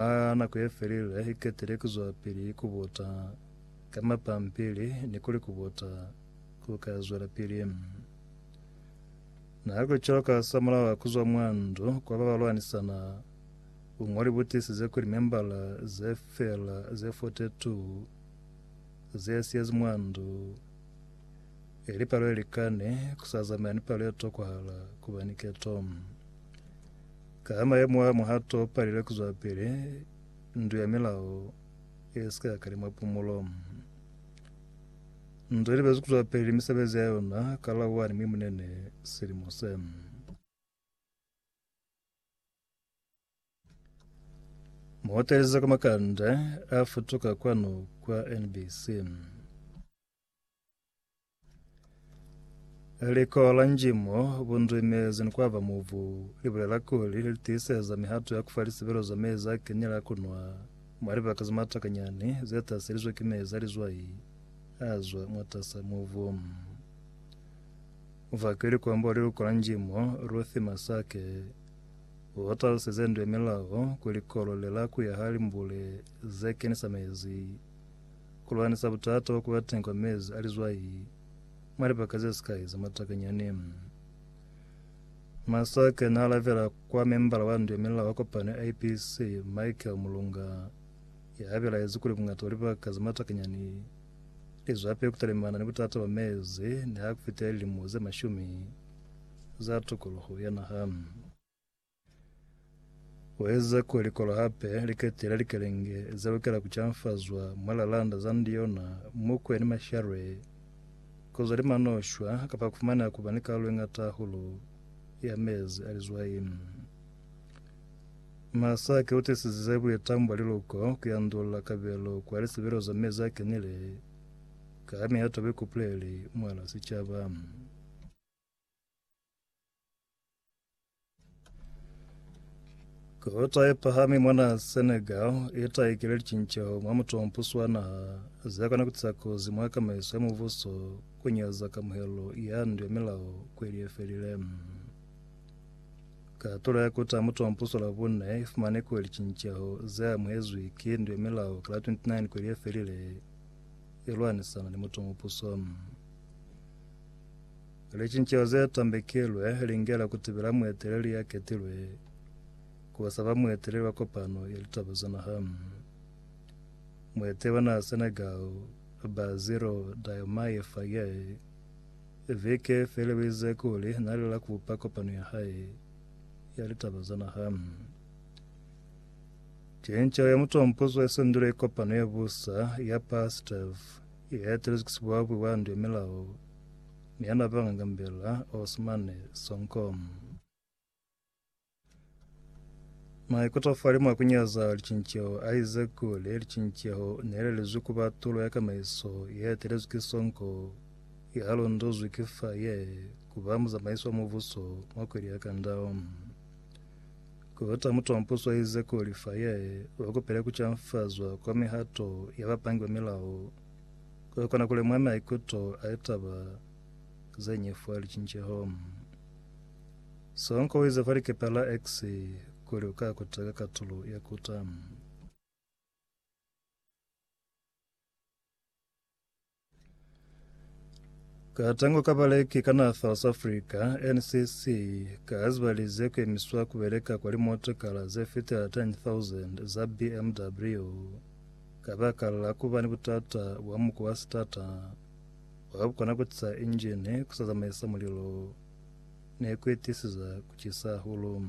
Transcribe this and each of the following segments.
Ha nako ye felile, hi ketile ku zwapili ku buta ka mapampili ni kuli ku buta ku ka zwelapili. Na kuli cwalo ka hasamulaho ha ku zwa mwa ndu kwa ba ba lwanisana, buñoli bu tiisize kuli membala ze fela ze 42 ze siyezi mwa ndu, ili palo ye likani ku sa zamaya ni palo ye tokwahala ku ba ni keto. Ka mayemo a mo ha to palelwe ku zwapele ndu ya milao ye sika ka limwa pumulo. Ndu li bezu ku zwapele misebezi ya yona ka la 1 Mwimunene silimo se. Muotelezi ka makanda a futuka kwanu kwa NBC. Likola njimo bundwime zinikwava muvu libulela kuli litiiseza mihato ya kufa lisebelo za mezi a kenyela a kunwa mwa libaka za matakanyani zetaselizwe ki mezi a lizwai azwa mwatasa muvu. Mufaki likomba wa lilukola njimo Ruth Masake utaluseze ndu ya milao kuli kolo lela kuya ha limbule zekenisa mezi Ku lwanisa butata bo ku ba teñi kwa mezi a lizwai mwa libaka ze sikai za matakanyani. Masake n'a alabela kwa membala wa ndu ya milao wa kopano ya IPC, Michael Mulunga, ya belaezi kuli bungata bwa libaka za matakanyani li zwapili ku talimana ni butata bwa mezi niha ku fitile lilimo ze mashumi za tokoloho ya naha. Ku eza kuli likolo hape li ketile likelenge ze lukela ku canfazwa mwa lalanda za ndiona, mukwe ni mashalwe, ku zwa limano shwa, kapa ku fumaneha ku ba ni kalulo ye ñata hahulu ya mezi a lizwai. Masaki u tisizize buitamo bwa liluko ku yandulula kabelo kwa lisebelo za mezi a kenile ka ha mihato ya buikupuleli mwa la sicaba. Kota ye pahami mwana Senegal itaikile licinceho mwa mutompuso wa naha zekona kutisa kozi mwa kamaiso ya mubuso kunyaza kamuhelo ya ndu ya milao kweli yefelile. Katulo ya kuta mutompuso la bune ifumane kuli licinceho ze amuhezwi ki ndu ya milao ka la 29 kweli yefelile ilwanisana ni mutompuso. Licinceho ze tambekilwe lingela ku tibela mueteleli ya ketilwe ku ba sa ba mueteleli wa kopano ya litaba za naha. Mueteli wa naha Senegal, Bassirou Diomaye Faye, viki ye feli o ize kuli na lela ku bupa kopano ya hae ya litaba za naha. Cinceho ya mutompuzo ye sendilwe ki kopano ya busa ya PASTEF Ye yatelezi ku sibwabwe bwa ndu ya milao ni ya napanga ngambela Osmane Sonko. Maikuto fali mwa kunyaza licinceho a ize kuli licinceho ne le lizwi kuba tulo ya kamaiso ye etelezwi ki sonko ye ha londozwi ki fa ye kuba muzamaisi wa mubuso mwa kweli ya kandao. Kota mutompuso ize kuli fa ye wa kupile ku canfazwa kwa mihato ya ba pangiwa milao, kwa kona kuli mwa maikuto a ye taba ze ñwi fa licinceho. Sonko uize fa likepe la X kuli uka kota ka katulo ya kota. Katango ka baleki ka naha South Africa, NCC, kaazibalize kuemiswa kubeleka kwa limotokala zefitela 10,000 za BMW kabaka la kuba ni butata bwa muko wa sitata wabukona kutisa injini, kusazamaisa mulilo, nekuitisiza kucisa hahulu.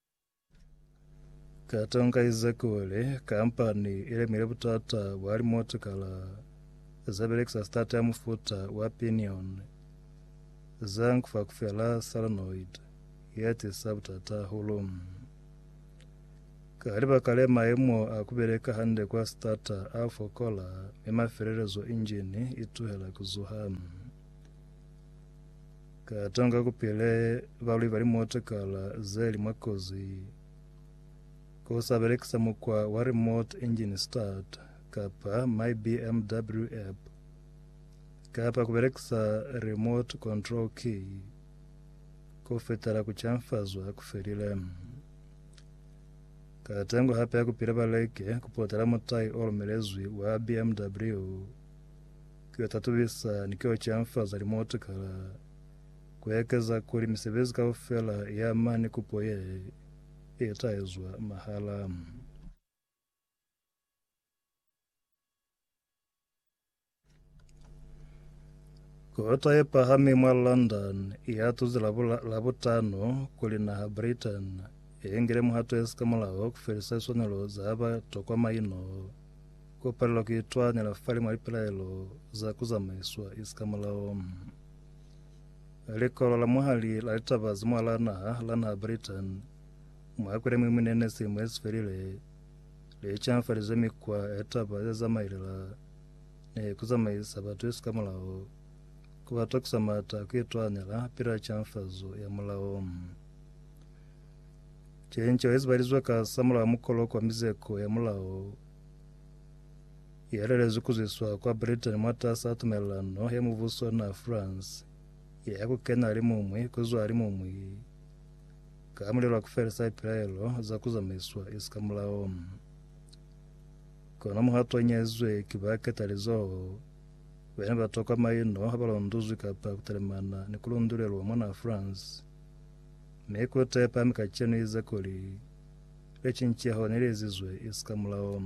Katonga Ezekiele kampani ilemile butata bwa limotikala zebelekisa stata ya mufuta wa pinion za nkufakufela solenoid yetisa butata hahulu. Ka libaka le maemo a kubeleka hande kwa stata a fokola mi mafelelezo injini ituhela kuzuha. Ka tonga ku pile balwi ba limootokara ze li mwa kozi ku sa belekisa mukwa wa remote engine start kapa My BMW app kapa ku belekisa remote control key ku fetela ku canfazwa ku felile. Ka tengo hape ya ku pile ba leke ku potela mutai o lumelezwi wa BMW Ki yo tatubisa ni ki yo canfaza limutu ka ku ekeza kuli misebezi kaufela ya mani kupo ye i ta ezwa mahala. Kota ye pahami mwa London ya tuzi Labutano kuli naha Britain i ingile muhato ye sikamulaho ku felisa liswanelo za ba tokwa maino. Ku palelwa ku itwanela fali mwa lipelaelo za ku zamaiswa isikamulao. Likolo la mwahali la litaba za mwalaa naha la naha Britain mwa kweli mwi mwi nene silimo yesifelile li canfalize mikwa ya litaba ye zamailela ni ku zamaisa batu isikamulao ku ba tokisa mata ku itwanela pila canfazo ya mulao. Cinco yezibalizwe ka samulaho mukolo kwa mizeko ya mulao i halelezwi ku zwiswa kwa Britain mwatas'a tumelelano ya mubuso na France ye ya ku kena limuñwi ku zwa limuñwi ka mulelo wa ku felisa lipilaelo za ku zamaiswa isi ka mulao. Kono muhato o ñaizwe ki ba ketalizoho ba ne ba tokwa maino ha ba londuzwi kapa ku talimana ni ku lundulelwa mwana France, mi kute pahami kacenu ize kuli, le cinceho ne li ezizwe isika mulao.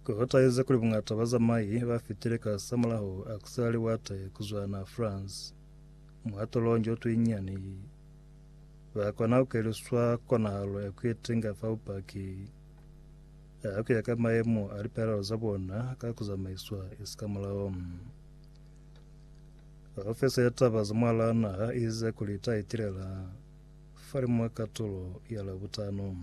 Ku hutahize kuli bungata ba zamai ba fitile ka samulaho a ku sela liwate ku zwa na France muhatolong jo tuinyani, ba kona ku keliswa konahalo ya ku itenga fa bupaki a ku ya ka maemo a lipelaelo za bona ka ku zamaiswa isika mulao. Haufeza ya taba za mwalana ha eza kuli ta itilela fali mwa katulo ya Labutano.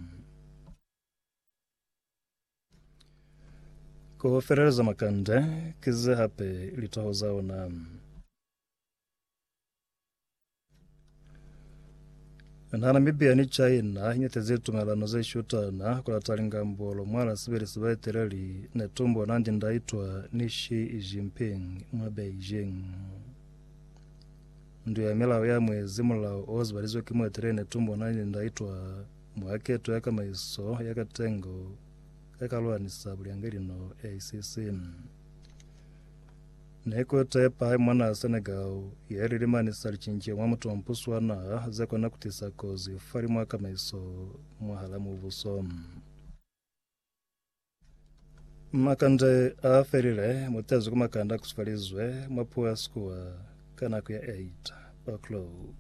Ko feleleza makande, kize hape litoho za ona. Na Namibia ni China inyatezi tumelano ze shutana kulata lingambolo mwala sibili sibaeteleli netumbo na ndindaitwa ni Xi Jinping mwa Beijing. Ndu ya milao ya mwezi mulao o zibalizwe ki mueteleli netumbo na ndindaitwa mwa keto ya kamaiso ya katengo ya kalwanisa bulyangeli no ACC. Ne ku tepa hai mwanaa Senegal ye lilimani sa licince mwa mutompuso wa naha ze kona ku tisa kozi fa li mwa kamaiso mwahala mubuso. Makande a felile mutezi ku makande a kusufalizwe mwa puo ya Sekua ka nako ya 8 o'clock.